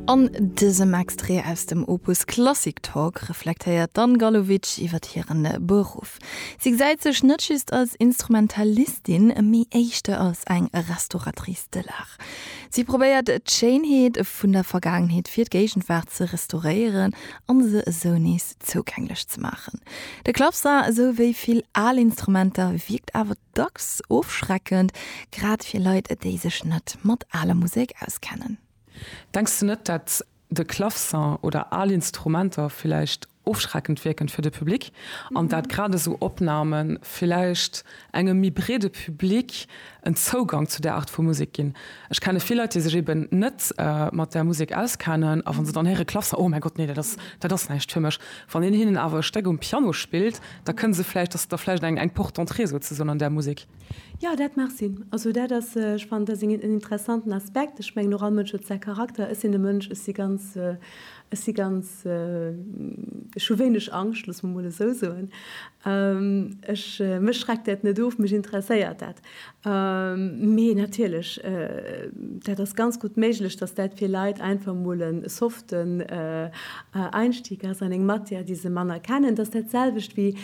An dësem Extrait aus dem Opus Klassik Talk reflektéiert d'Anne Gallowitsch iwwer hire Beruff. Si gesäit sech net just als Instrumentalistin, mee éischter als eng Restauratrice de l'art. Si probéiert d'Schéinheet vun der Vergaangenheet fir d'Géigenwaart ze restauréieren a se esou nees zougänglech ze maachen. De Clavecin, esou wéi vill al Instrumenter, wierkt awer. dacks ofschreckend, grad fir Leit, déi sech net mat aler Musek auskennen. Denks du net, dat de Clavecin oder al Instrumenter villäicht ofschreckend wierken fir de Public an dat grad esou Opnahmen villäicht engem méi breede Public en Zougang zu där Art vu Musek ginn? Ech kenne vill Leit, déi sech eben net mat där Musek auskennen a wann se dann héiere Clavecin, Oh mäi Gott, nee, dat ass näischt fir mech. Wann een hinnen awer e Stéck um Piano spillt, Da kënn se vläicht, dass Der vläicht eng Porte d'entrée souzesoen an där Musek. Jo, dat mag sinn. Also dat ass, ech fannen, dat ass en interessanten Aspekt. Ech mengen och, all Mënsch huet säi Charakter. Ech sinn e Mënsch, ech si ganz, ech si ganz, ech hu wéineg Angscht, loosse mer mol esou soen. Ech, mech schreckt dat net of, mech interesséiert dat. Mee natierlech, dat ass ganz gutt méiglech, datt dat fir Leit einfach mol e soften Einstieg ass an eng Matière, déi se manner kennen. Dat ass dat selwecht wéi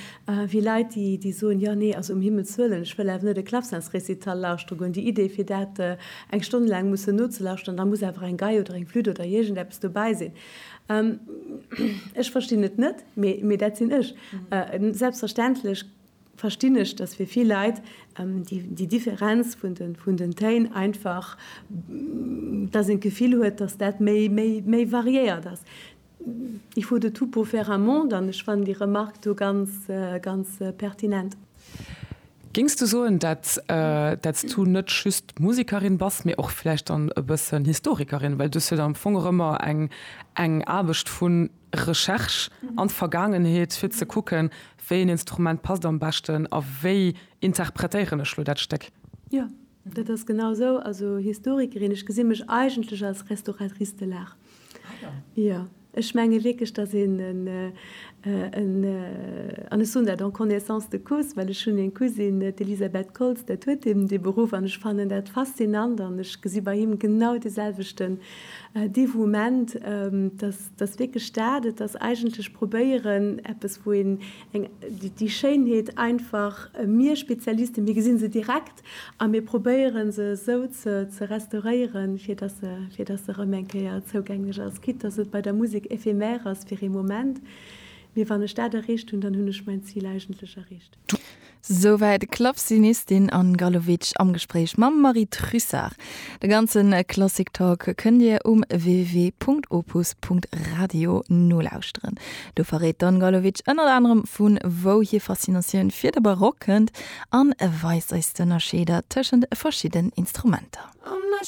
Leit, déi soen, jo nee, also um Himmels wëllen, ech wëll awer net e Clavecinsrécital lauschtere goen. Déi Idee, fir dat eng Stonn laang mussen nozelauschteren, da muss awer eng Gei oder eng Flütt oder iergendeppes dobäi sinn. Ech verstinn et net, mee dat sinn ech. Selbstverständlech verstinn ech, dass fir vill Leit déi Differenz vun den Téin einfach, dass een d'Gefill huet, dass dat méi variéiert ass. Il faut de tout pour faire un monde an ech fannen déi Remark do ganz pertinent. Géings du soen, dat s du net just Musekerin bass, mee och vläicht dann e bëssen Historikerin? Well du hues jo dann am Fong och ëmmer eng Aarbecht vu. Recherche an d'Vergaangenheet, fir ze kucken, wéi een Instrument passt am beschten a wéi interpretéieren ech lo dat Stéck. Jo, dat ass genau esou. Also Historikerin, ech gesi mech eigentlech als Restauratrice de l'art. Ah jo. Jo, ech menge wierklech, datt een en, en, an ech soen dat en connaissance de cause, well ech hunn eng Cousine, d'Elisabeth Koltz, dat huet eben dee Beruff an ech fannen dat faszinant an ech gesi bei him genau deeselwechten Dévouement, datt, Et ass wierklech dat, et ass eigentlech probéieren, eppes, wou een eng, déi Schéinheet einfach, mir Spezialisten, mir gesi se direkt a mir probéiere se esou ze restauréieren, fir datt se, fir datt se erëm eng Kéier zougänglech ass, quitte datt et bei der Musek éphémère ass fir ee Moment. Mee wann ech dat erreecht hunn, dann hunn ech mäin Zil eigentlech erreecht. Souwäit Clafzinistin an Gallowitsch am Gespréich mam Marie Trussart. De ganze Klassik Talk kënnt Dir um www.opus.radio nolauschteren. Do verréit d'Anne Gallowitsch ënnert anerem vu wou hir Faszinatioun fir de Barock kënnt an weist eis d'Ënnerscheeder tëschent verschidden Instrumenter.